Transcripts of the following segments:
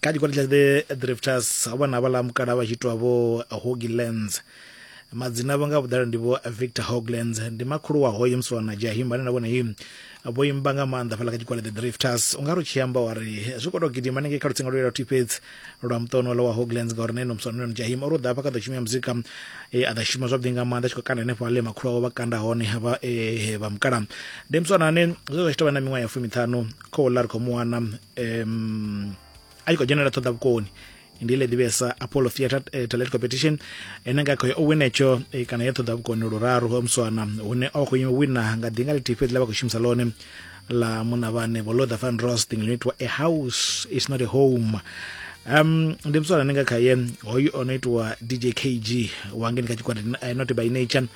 ka dikwana tla the drifters ho vha na vhala mukala vha tshi itwa vho hoglands madzina vho nga vhuḓalo ndi vho victor hoglands ndi makhulu wa hoyo musi wana jahim vhane na vhone him vho imba nga maanḓa fhala kha tshikwale the drifters u nga ri tshi amba wa ri zwi khou tou gidima nengei kha lutsinga lwo yela thifhedzi lwa muṱono lwa wa hoglands ngauri neno musi waneno jahim o ri u ḓa hafha kha ḓo shumia muzika e, a ḓa shuma zwavhuḓi nga maanḓa tshi khou kanda henefho ale makhulu awo vha kanda hone vha e, vha mukala ndi musi wana ane zwe zwa tshi tou vha na miṅwaha ya fumiṱhanu khou ḽa ri khou mu wana um a tshi khou dzhenela ṱhoḓa vhukoni ndi ile ḓivhesa apollo theatre eh, talent competition ene nga khoyo o winetsho eh, kana ya ṱhoḓa vhukoni luraru ha muswana hune o khou wina nga ḓinga ḽithihi fhedzi ḽa vha khou shumisa ḽone la muna vhane vho lotha van rosting ḽino itiwa a house is not a home um ndi muswana ane nga khaye hoyu o no itiwa dj kg wangeni kha tshikwati eh, not by nature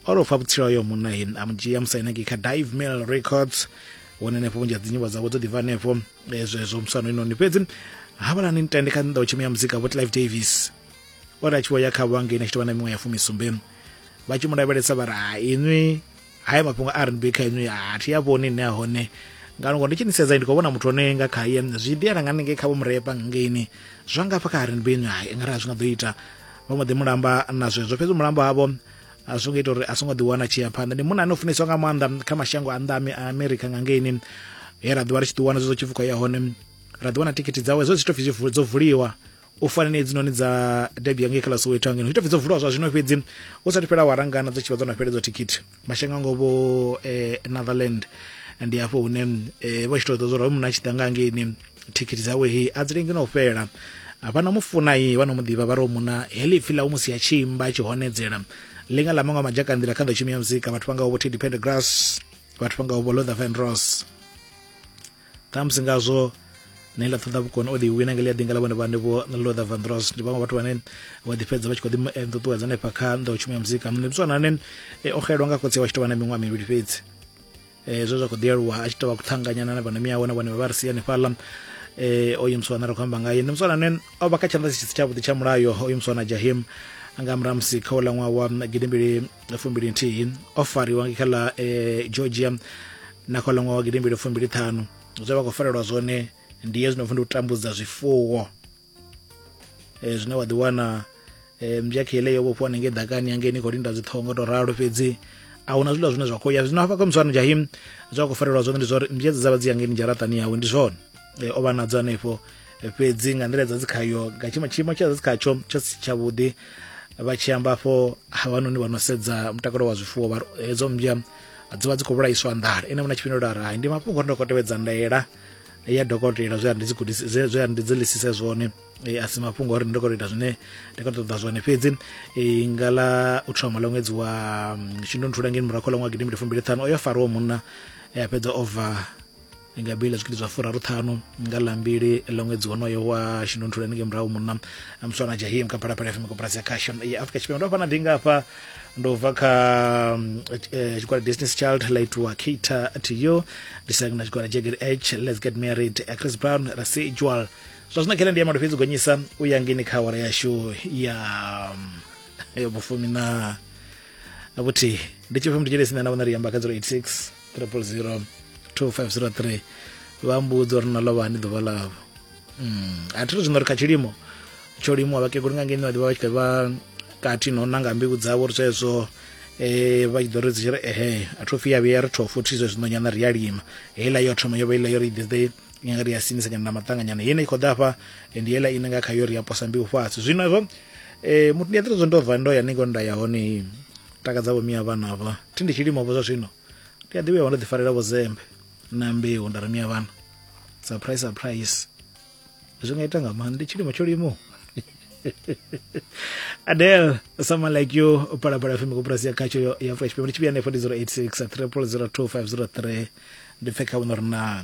o ro fa vhutsila hoyo munna he a mu dzhia musainaki kha dive mail records hone henefho vhunzhi ha dzinyimbo dzavho dzo ḓivha hanefho eh, zwezwo musano inoni fhedzi havhalani nitende kha nnḓa u tshimea muzika vho clive davis o ri a tshi vho ya kha vhange ine tshi tovha na miṅwe ya fumisumbe vha tshi mu lavhelesa vha ri ha inwi haya mafhungo a rnb kha inwi a thi a vhoni ine a hone ngano ngo ndi tshi nisedza ndi khou vhona muthu one nga khaye zwi diela nga ningei kha vho murepa ngeini zwa ngafha kha rnb inwi hai ngari a zwi nga ḓo ita vha mbo ḓi mulamba na zwezwo fhedzi mulamba havho a zwi ngo ita uri a songo ḓiwana a tshi ya phanḓa ndi munna ane o funeswa nga maanḓa kha mashango a nnḓa a america nga ngeini he ra ḓiwa ri tshi ḓiwana zwo tshipfukwa ya hone ra ḓiwana thikhithi dzawe zwo zwitopfi dzo vuliwa u fana na hedzinoni dza debi ya ngei kha ḽa soweto angeno zwitopfi dzo vuliwa zwa zwino fhedzi u sathu fhela warangana dzo tshi vha dzo no fheledzwa thikhithi mashango a ngo vho eh, netherland ndi hafho hune eh, vho tshi tou ḓo zwo ra munna a tshi ḓa nga ngeini thikhithi dzawe he a dzi lengi na u fhela vha no mu funa ye vha no mu ḓivha vha ri muna heḽi pfhi ḽa u musi a tshi imba tshi honedzela ḽinga ḽa maṅwe madzhaka nḓila kha nḓowshumi ya muzika vhathu vha ngaho vho teddy pendergrass vhathu vha ngaho vho lother van ross ṱhamusi ngazwo ne ḽa ṱoḓa vhukoni o ḓi wina nge ḽi a ḓinga ḽa vhone vhane vho lother van ross ndi vhaṅwe vhathu vhane vha ḓi fhedza vha tshi kho ḓi eh, ṱuṱuwedza hanefha kha nḓowshumi ya muzika mnebiswana ane eh, o xelwa nga khotsi wa tshi tovha na miṅwaha mivhili fhedzi eh, zwe zwa kho ḓi aluwa a tshi tovha kuṱhanganyana na vhana miyawe na vhone vha vha ri sia hanefhaḽa eh, oyu muswana ri khou amba ngaye ndi muswana ane o vha kha tshanḓa tshisi tshavhuḓi tsha mulayo oyu muswana jahim nga murahu musi kha uḽa ṅwaha wa gidimbili fumbili nthihi o fariwa kha ḽa eh, georgia na kha uḽa ṅwaha wa gidimbili fumbili ṱhanu zwe vha khou farelwa zwone ndi hezwi no pfi ndi u tambudza zwifuwo e, zwine wa ḓiwana e, mbyakhe ile yo vhofhiwa nenge ḓakani yange ni khou linda dziṱhoho nga tou ralo fhedzi a huna zwiḽa zwine zwa khou ya zwino hafha kha musano jahim zwa khou farelwa zwone ndi zwa uri mbyedza dza vha dzi yangeni dzharaṱani yawe ndi zwone e, o vha nadzo hanefho e, fhedzi nga nḓila dza dzi khayo nga tshiimo tshiimo tsha dzi khatsho tsha si tshavhuḓi vha tshi amba afho havhanoni vha no sedza mutakalo wa zwifuwo vha hedzo mmbya dzi vha dzi khou vhulaiswa nḓala ene vhona tshifhinga uri hai ndi mafhungo ri ndo khou tevhedza ndaela ya dokotela zwe a ndi dzi gudisa zwe zwe a ndi dzi lisise zwone e, a si mafhungo ori ndi khou ita zwine ndi khou ṱoḓa zwone fhedzi e, nga ḽa u thoma ḽa ṅwedzi wa mm, shundunthula ngeni murahu ḽa ṅwaha gidimbili fumbili ṱhanu o yo fariwa munna e, a fhedza o bva nga bili ḽa zwigidi zwa furaru ṱhanu nga ḽa mbili ḽa ṅwedzi wonoyo wa shundunthula ngei murahu munna muswana jahim kha phalaphala fm koporasi ya khashon ya afrika tshipembe ndo fana ndi ngafha ndo bva kha mm, eh, tshigwada destiny's child la itiwa cater to you ndi sina na tshigwada jagged h let's get married eh, chris brown residual zwa zwino khelende ya malofhedzi gonyisa u ya ngini kha awara yashu ya mm, ya vhufumi na na vhuthihi ndi tshifhe mndu tshele sina na vhona ri amba kha 086 300 2503 vha mbudzo ri na lovha hani ḓuvha ḽavho mm. a thi to zwino ri kha tshilimo tsho limuwa vhakegulu nga ngeno vha tshi vha kati no nanga mbilu dzavho ri zwezwo eh vha tshi ḓo ri dzi ri ehe a thu fiya vhuya ri thofu thi zwezwo nyana ri ya lima heiḽa yo thoma yo vha iḽa yo ri ḓe nyanga ri ya sinisa nyana na maṱanganyana yene i khou ḓa hafha ndi heiḽa ine nga kha yo ri ya posa mbilu fhasi zwino hezwo eh muthu ndi a ḓi zwo ndo bva ndo ya ningo nda ya hone takadza vho miya vhana vha thi ndi tshilimo vho zwa zwino ndi a ḓi vhuya ndo ḓi farela vho zembe na mbeu nda ramia vhana surprise surprise zwi nga ita nga maanḓa ndi tshilimo tsho limo adel someone like you palapala fm koporasi ya khatsho ya afrika tshipembe ndi tshivhiya nefo ndi 086 3002503 ndi pfekha vhuno ri naa